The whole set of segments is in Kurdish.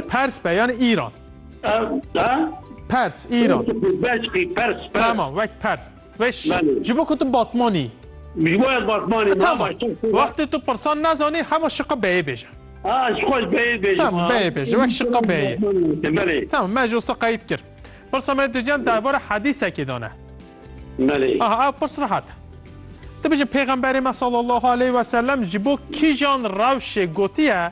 Pers be yani Îran. Pers, Îran. Tamam, wek Pers. Weş, ji bo ku tu Batmanî. Ji bo ez Batmanî. Tamam. Wextê tu pirsan nazanî hema şiqa beyê bêje. Ha, şiqa beyê bêje. Tamam, beyê bêje. Wek şiqa beyê. Belê. Tamam, me ji wisa qeyîd kir. Pirsa me dûdiyan derbara hedîsekê dane. Belê. Aha, ev pirs rehat. Dibêje pêxemberê me sallallahu aleyh ve sellem ji bo kîjan rewşê gotiye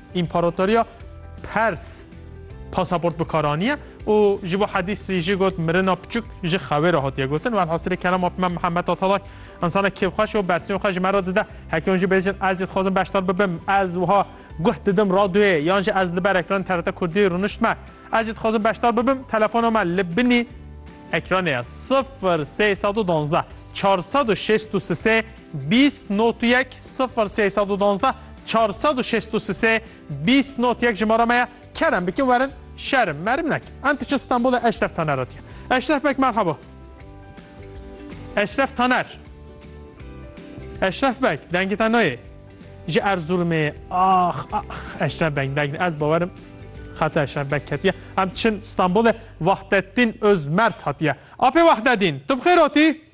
Împaratoriya Pers pasaport bi kar aniye û ji bo hedîsî jî got mirina piçûk ji xewê re hatiye gotin. Velhasilê kelama me Mihemed Atalay insana kêfxweş û bersîyên xwe ji me re dide. Heke hûn jî bêjin ez jî dixwazim beşdar bibim, ez wiha guh didim radyoyê yan jî ez li ber ekranê TRT Kurdî rûniştime. Ez jî dixwazim beşdar bibim, telefona me li binî ekranê ye sifir sê sed û duwazdeh çar sed û şêst û sisê. Bîst not yek sifir sey sed û duwazdeh çar sed û şêst û sisê bîst not yek jimara me ye kerem bikin werin şerim merim nekin em diçin Stenbolê Eşref Taner re diye Eşref bek merhaba Eşref Taner Eşref bek dengê te nayê ji Erzurumê ax ax Eşref bek deng ez bawerim xate Eşref bek ketiye em diçin Stenbolê Wahdeddin Özmert hatiye apê Wahdeddin tu bi xêr hatî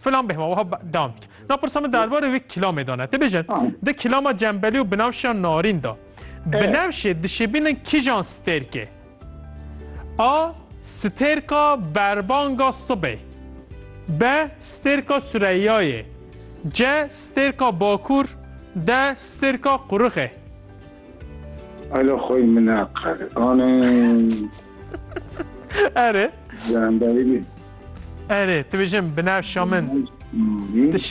Filan bêhma wiha dewam dike. Na pirsa min derbarê wê kilamê dane. Te bêje di kilama cembelî û binewşiya narîn da. Binewşê dişibînin kijan stêrkê? A. Stêrka berbanga sibê. B. Stêrka Süreyyayê. C. Stêrka bakur. D. Stêrka qurixê. Alo xwe min ne qere. Anê. Erê. Zandayê. Erê, tu bêjin binevşa min. Dişim.